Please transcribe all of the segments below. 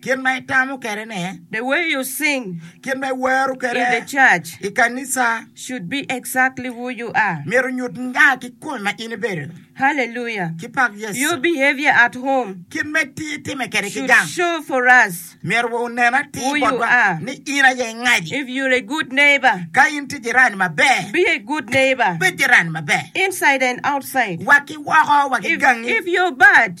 Kit ma itamo kwede ne. The way you sing. Kit ma iwero kwede. In the church. I kanisa. Should be exactly who you are. Myero onyut nga ki kome ma in ibedo. Hallelujah. Ki pak Yecu. Your behavior at home. Kit ma itime kwede ki gang. Should show for us. Myero wa onen atir botwa. Who you are. Ni in aye ingaji. If you're a good neighbor. Ka in tye jirani maber. Be a good neighbor. Bed jirani maber. Inside and outside. Wa ki woko wa ki gangi. If you're bad.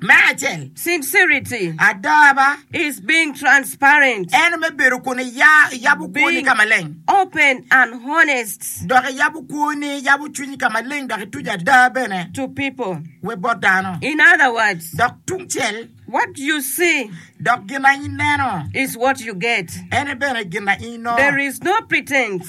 Me acel. Sincerity. Adaba. Is being transparent. Eno me bedo kun iya, iyabo kwoni ka maleng. Open and honest. Dok iyabo kwoni, iyabo cwinyi ka maleng dok ituco ada bene. To people. We bot dano. In other words. Dok tungcel. What you see. Dok gin na ineno. Is what you get. Ene bene gin na inongo. There is no pretense.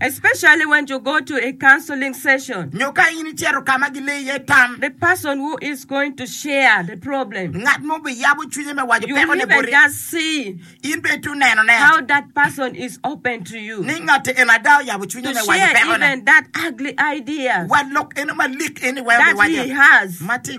especially when you go to a counseling session. Nyo ka in icito ka ma gilei iye tam. The person who is going to share the problem. Ngat mo biyabo cwinye me waco You pekone even boti. just see In bene itye nenone how that person is open to you ni ngatti eno ada oyabo cwinye to me waco share pekone. even that ugly ideas Wa lok eno malik eni weko that biwaco. he has. Ma tye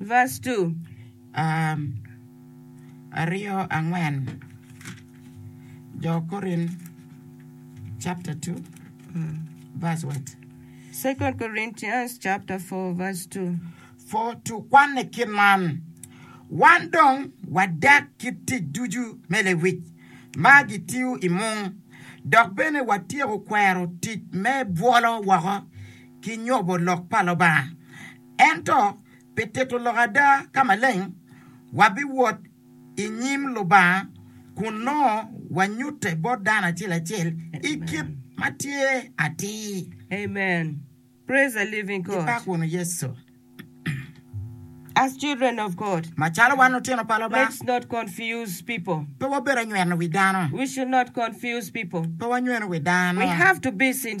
Vas. Two, um, aryo, angwen, Jo Korin chapter two, verse what? Second Corinthians chapter four verse two. Four, two, kwanne kit man, Wan dong wadek kit tic ducu me lewic ma gitiyo i mung, dok bene watyeko kwero tic me bwolo woko ki nyobo lok pa Lubanga. Ento pi tito lok ada ka maleng, wabiwot i nyim Lubanga kun nongo wanyutte bot dano acel acel i kit ma tye atir. Amen. Praise the living God. Gibak wunu Yecu. As children of God. Macalo wan lutino pa Lubanga. Let's not confuse people. Pe wabed anyweno wi dano. We should not confuse people. Pe wanywenu wi dano. We have to be sincere.